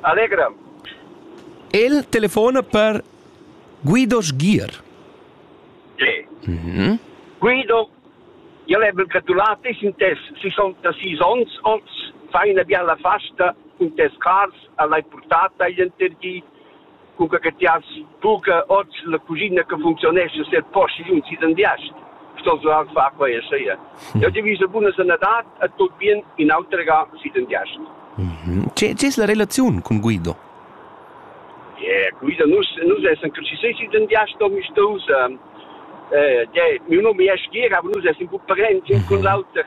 Allegra. El telefona per Guido Sgier. Sì. Mm-hmm. Guido, io le ho gratulati in tes 66 ans, oz fai una bella festa in tes cars, l'hai portata gli interdi cunca che ti has buca oz la cusina che funcziunescha set posti un sidendiast sto so al fa quei e sia io divisa buna sanadad a tut bien in autrega sidendiast C'è c'è la relazione con Guido? Yeah, Guido nus nus essen così sei sidendiast mi stos eh ja mi no mi es gira aber nus essen gut parenti con l'auter